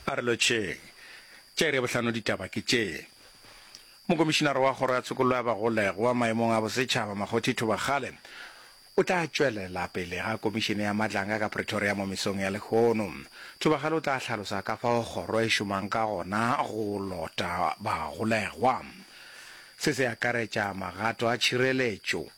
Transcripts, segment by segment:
A re lotšheng. Tša iri ya bohlano ditaba ke tše. Mokomišinara wa Kgoro ya Tshokollo ya Bagolegwa maemong a Bosetšhaba Makgothi Thobakgale o tla tšwelela pele ga komišene ya Madlanga ka Pretoria mo mesong ya lehono. Thobakgale o tla hlalosa ka fao kgoro e šomang ka gona go lota bagolegwa. Se se akaretša magato a tšhireletšo,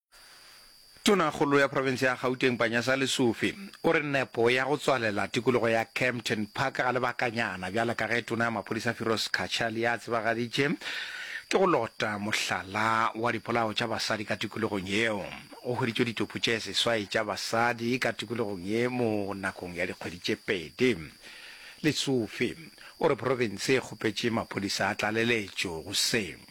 Tonakgolo ya profense ya Gauteng Panyaza Lesufi o re nepo ya go tswalela tikologo ya Kempton Park ga lebakanyana bjale ka ge tona ya maphodisa Firoz Cachaly a tsebagaditše ke go lota mohlala wa dipolao tša basadi ka tikologong yeo. Go hweditšwe ditopo tše seswai tša basadi ka tikologong ye mo nakong ya dikgwedi tše pedi. Lesufi o re profense e kgopetše maphodisa a tlaleletšo go se.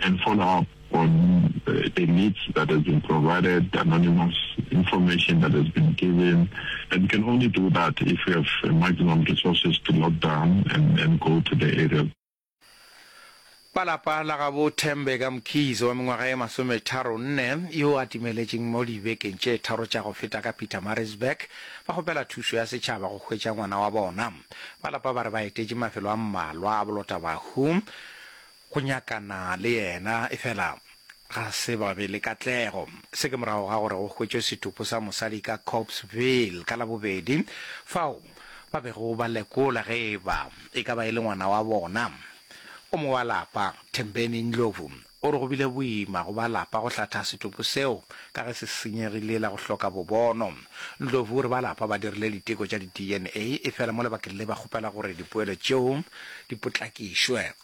and follow up on the leads that has been provided, anonymous information that has been given, and can only do that if we have maximum resources to lock down and, and go to the area. Ba lapa la gabo Thembe ka Mkhize wa mengwaga e masometharo nne yo a timeletšeng mo dibekeng tše tharo tša go feta ka Pietermaritzburg ba kgopela thušo ya setšhaba go hwetša ngwana wa bona. Ba lapa ba re ba etetše mafelo a mmalwa a bolotabahu Go nyakana le yena, efela ga se ba be le katlego. Se ke morago ga gore go hwetšwe setopo sa mosadi ka Copesville ka Labobedi, fao ba bego ba lekola ge e ba e ka ba e le ngwana wa bona. O mongwe wa lapa, Thembeni Ndlovu, o re go bile boima go ba lapa go hlatha setopo seo ka ge se senyegile la go hloka bobono. Ndlovu o re ba lapa ba dirile diteko tša di-DNA, efela mo lebakeng le ba kgopela gore dipoelo tšeo di potlakišwe.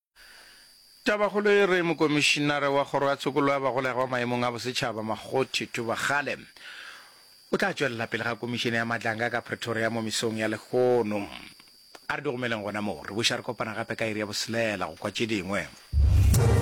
Tabakgolo e re Mokomišinare wa Kgoro ya Tshokollo ya Bagolegwa Maemong a Bosetšhaba, Makgothi Thubakgale, o tla tšwelela pele ga Komišene ya Matlanga ka Pretoria mo mesong ya lehono. A re di gomeleng gona moo, re buša re kopana gape ka iri ya boselela go kwa tše dingwe.